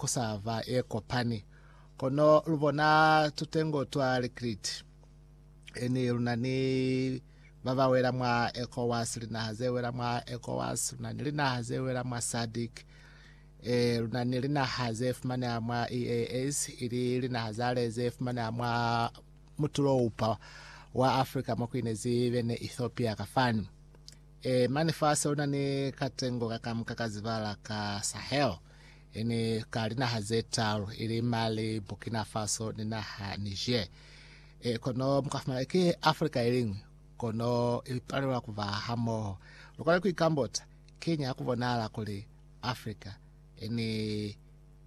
ku sa ba ye kopani. Kono lu bona tutengo twa likriti, yani lu na ni ba ba wela mwa ECOWAS, linaha ze wela mwa ECOWAS, lu na ni linaha ze wela mwa SADC, e, lu na ni linaha ze fumaneha mwa EAS, ili linaha zale ze fumaneha mwa mutulo-upa wa Afrika mo ku inezi bene Ethiopia ka fani. E, mani fasi lu na ni katengo kakamuka ka zibala ka Sahel. e ni ka linaha ze talu, ili Mali, Burkina Faso ni naha Niger. E, kono mukafumana ki Afrika iliñwi, kono ipalelwa kuba hamoho. Lukona kuikambota, Kiñi hakubonahala kuli Afrika e ni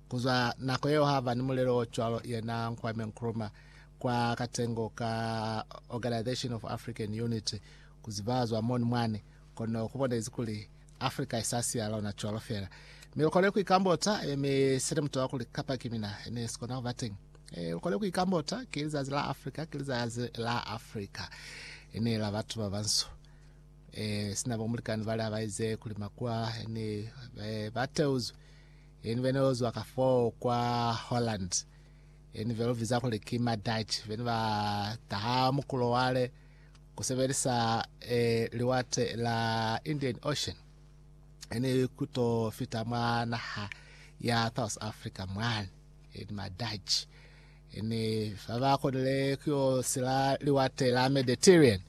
kuzwa nako yeo haba ni mulelo o cwalo? Yena Kwame Nkrumah kwa katengo ka Organization of African Unity, kuzibazwa moni mwani, kono kubonezi kuli Africa isasi ya lona cwalo fela. Me ukole kuikambota, e, me sele mutoa kuli kapa ki mina, ne sikona kuba teng. E, ukole kuikambota, ki lizazi la Africa, ki lizazi la Africa. Ene la batu ba banso. E, sina bo mulikani bale abaize kuli makua, ene, e, bateuzwe. Ene bene ozwa ka fo kwa Holland. Ene velo viza kuli ki ma Dutch. Bene ba taha mukulo wale. ku sebelisa Liwate la Indian Ocean ne ku to fita mwa naha ya South Africa mwani ni Madutch ne fa ba konile ku yo sila Liwate la Mediterranean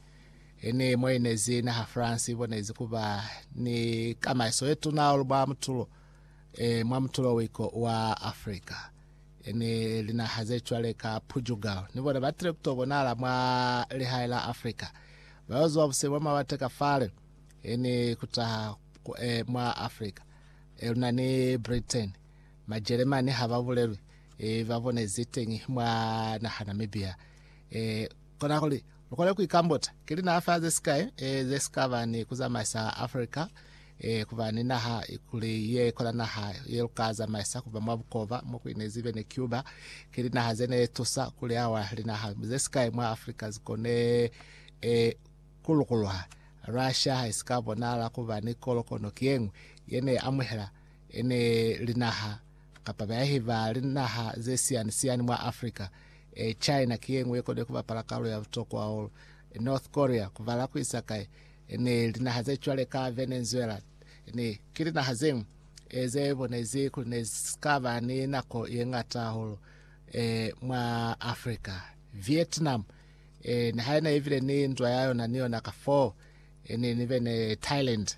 ne mo inezi naha France ibonezi kuba ni kamaiso ye tuna mwa mutulo mwa mutulo wiko wa Africa. ni linaha ze cwale ka Portugal, ni bona ba tile kuto bonala mwa lihae la Africa. Ba yo zuwa buse bwa mawate ka fale, ni kutaha e, mwa Africa. E, luna ni Britain, Majeremani ha ba bulelwi, e, ba bonezi teñi mwa naha Namibia. E, Kona kuli lu kone ku ikambota, Ki linaha ze sikai ze si ka ba ni ku zamaisa Africa ku ba ni naha kuli ye kona naha ye lu ka zamaisa ku ba mwa bukova, mo ku inezi be ni Cuba? Ki linaha ze ne tusa kuli awa linaha ze sikai mwa Africa zi kone ku lukuluha. Russia ha i si ka bonahala ku ba ni kolokono ki ye ñwi ye ne amuhela ne linaha kapa bayahi ba linaha ze siyani-siyani mwa Africa. E, China ki yeñwi yekona ku bapala kalulo ya butokwa hahulu. E, North Korea, kubala kuisa kai, e, ni linaha ze cwale ka Venezuela, ni, ki linaha zeñwi, e, ze bonezi kuli ne si ka ba ni nako yeñata hahulu, e, mwa Africa. Vietnam, e, niha yena yebile ni ndwa ya yona ni yona ka foo, e, ni, ni bene Thailand.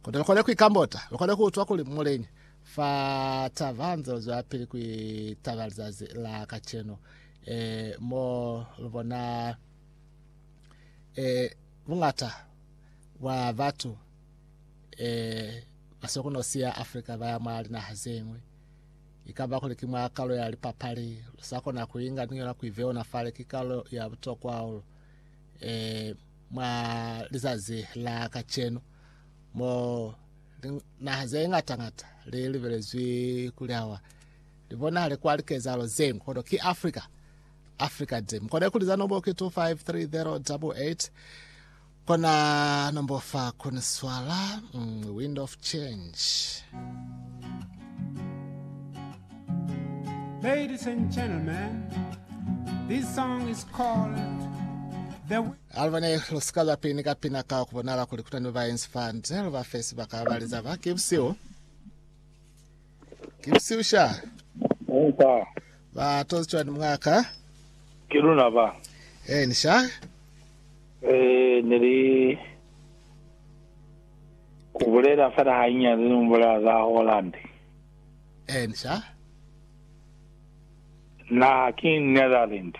Kono lukona kuikambota, lukona kuutwa kuli muleñi Fa taba hanze luzwelapili ku itaba lizazi la kacenu, e, mo lubona e, buñata bwa batu e, basokono siya Afrika baya mwa linaha zeñwi. Ikaba kuli ki mwa kalulo ya lipapali, lusakona ku inga niño na ku iveona fale. Ki kalulo ya butokwa hahulu e, mwa lizazi la kacenu, mo Linaha ze ñata-ñata li libelezwi kuli hawa li bonahale kwa likezahalo zenu, kono ki Africa. Africa de. Mukone kuliza nombo ki 253088 kona nombo fa kuni swala mm, wind of change. Ladies and gentlemen, this song is called The Aluba ne lu si ka ba peni ka pina ka ku bonala kuli ku na ni babaenzi fa nde, lu ba fe sibaka ba li za ba, Ki busihu. Ki busihu sha. Ba tozi cwani mwa ka? Ki luna ba. Eeni sha. Ee, ne li ku bulela fela hanyinyani ni ku bulela za Holland. Eeni sha. Na, ki Netherlands.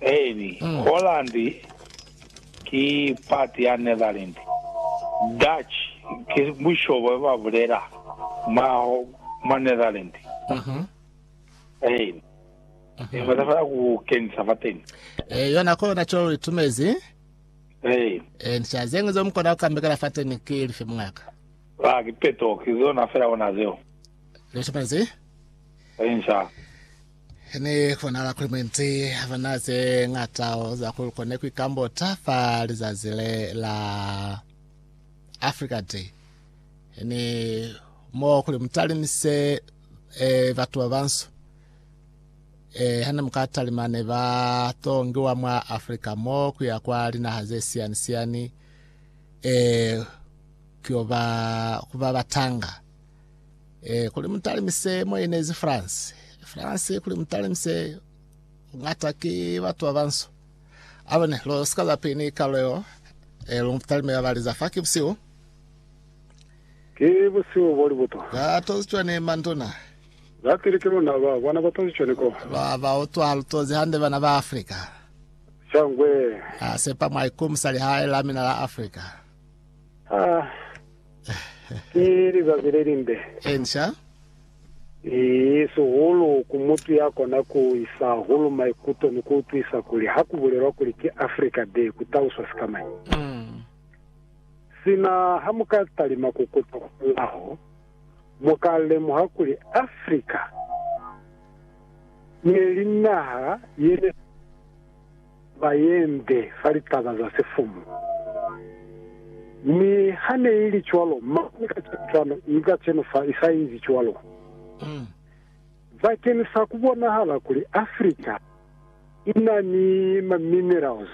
Eeni, Holland ki pati ya Netherland. Dutch ki bushobo ba bulela mwa mwa Netherland. Eeni, ne ba tafela ku kenisa fateni. Ee, yona ko yona co itumezi. Eeni, Eeni, sha zeñwi zeo mukona kukambekela fateni ki lifi, muñaka? ba kipeto ki zona fela ona zeo. Litumezi. Eeni, sha. He ne konahala kuli mwendi ha ba na ze ñata za ku kone ku ikambota fa lizazi le la Africa Day, he ni mo kuli mu talimise eh, batu ba banso eh, ha ne mu ka talima ne ba to ngiwa mwa Africa mo ku ya kwa linaha ze siyani siyani eh, ku yo ba ku ba batanga Eh, kuli mutalimise mo inezi France. France kuli mutalimise ngata ki batu ba banso. Abone lo sika za pini kalo yo. Eh, lo mutalime ba baliza fa ki busiu. Ki busiu bo li butwa. Ba tozi cwani manduna. Za pili ki luna ba bona ba tozi cwani ko. Lwa ba utwa lu tozi hande bana ba Africa. Shangwe. A sepa mwa ikumusa lihae la mina la Africa. Ah, ki lizazi le limbe. Inca. Ii, sihulu ku mutu ya kona ku isa hulu maikuto ni ku utwisa kuli ha ku bulelwa kuli ki Africa Day ku taluswa sikamañi. Sina ha mu ka talima ku kuta kwamulaho, mu ka lemuha kuli Africa ne li naha ye ne. ba yende fa litaba za sifumu. Mi ha ne i li cwalo, mane kacenu cwalo, i kacenu fa i sa ezi cwalo. Bakeni sa ku bonahala kuli Africa i na ni ma minerals,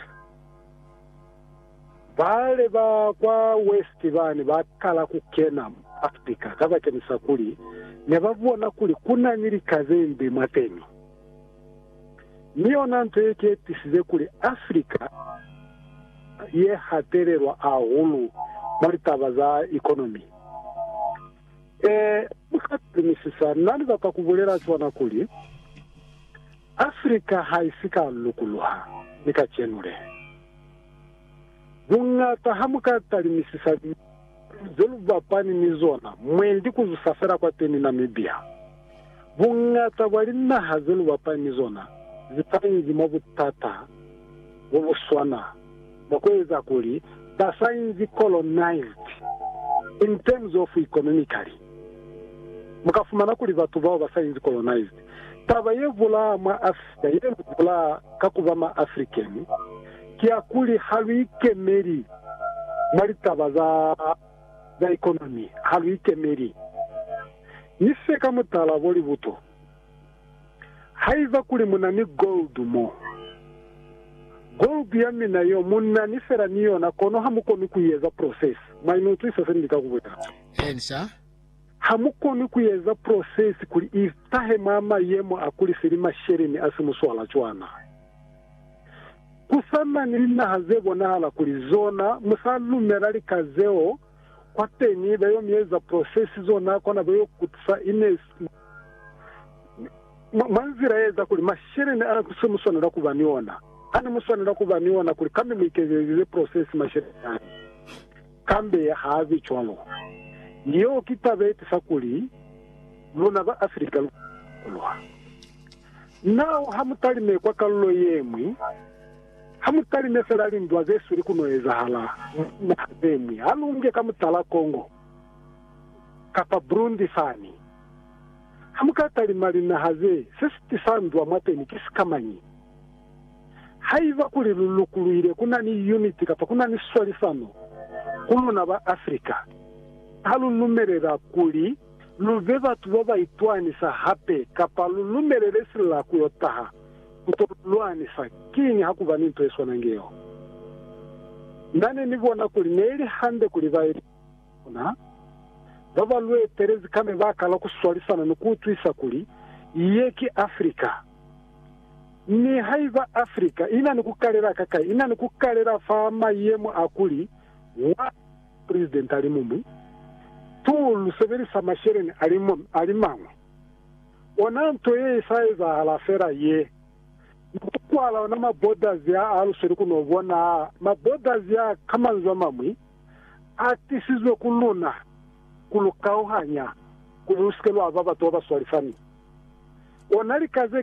bale ba kwa West bani ba kala ku kena mwa Africa kabakeni sa kuli ne ba bona kuli ku na ni likazembe mwateni. mi yona nto ye ketisize kuli Africa ye hatelelwa ahulu mwa litaba za economy. Ee, mu ka telumisisa, na ni bata ku bulela cwana kuli, Africa ha isi ka lukuluha ni kacenu le. Buñata ha mu ka talimisisa liñañu ze lu bapani ni zona mwendi ku zusa fela kwateni Namibia. Buñata bwa linaha ze lu bapani ni zona ze sa inzi mwa butata bo bu swana bwa ku eza kuli ba sa inzi colonized in terms of economically. Mu ka fumana kuli batu bao ba sa inzi colonized, taba ye bulaa mwa Africa ye lu bulaa ka ku ba ma African, Kiakuli ha lu ikemeli mwa litaba za za ikonomi, ha lu ikemeli ni se ka mutala bo libuto. Haiba kuli mu na ni gold mo, gold ya mina yo mu na ni fela ni yona kono ha mu koni ku i eza process. Mwa i utwisa se ni lika ku bulela? Eeni, sir. Ha mu koni ku i eza process kuli i tahe mwa mayemo a kuli seli masheleni a si muswala cwana. Ku sa na ni linaha ze bonahala kuli zona mu sa lumela lika zeo, kwateñi ba yo mi eza prosesi zona kona ba yo kutisa Inez mwa nzila ye eza kuli masheleni a se mu swanela ku ba ni ona, a ne mu swanela ku ba ni ona kuli kambe mu ikezelize prosesi masheleni ani. Kambe ha a bi cwalo. Yeo ki taba ye tisa kuli luna ba Afrika lu ka lwa. Nao hamutalime kwa kalulo yeñwi, hamutalime fela lindwa zesweli kuno ezahala mwa linaha zeñwi, halunge ka mutala Congo kapa Burundi fani. Hamuka talima linaha ze, se sitisa ndwa mwateni ki sikamañi? Haiba kuli lu lukuluile kuna ni uniti kapa kuna ni swalisano ku luna ba Africa, ha lu lumelela kuli, lu be batu ba ba itwanisa hape kapa lu lumelele silila ku yo taha ku to lu lwanisa, kiñi ha ku ba ni nto ye swana nge yeo? Na ne ni bona kuli ne li hande kuli baezeli ba luna ba ba lu etelezi ka ne ba kala ku swalisana ni ku utwisa kuli ye ki Afrika. Nihaiba Afrika i na ni ku kalela ka kai, i na ni ku kalela fa mayemo a kuli wa. President alimuñwi, tu lu sebelisa masheleñi alimañwi. Ona nto ye isa ezahala fela ye, ni ku kwala ona ma borders a a lusweli ku no bona a ma borders a, ka manzwi amañwi, a tisizwe ku luna ku lu kauhanya kuli lu si ke lwa ba batu ba ba swalifani. Ona lika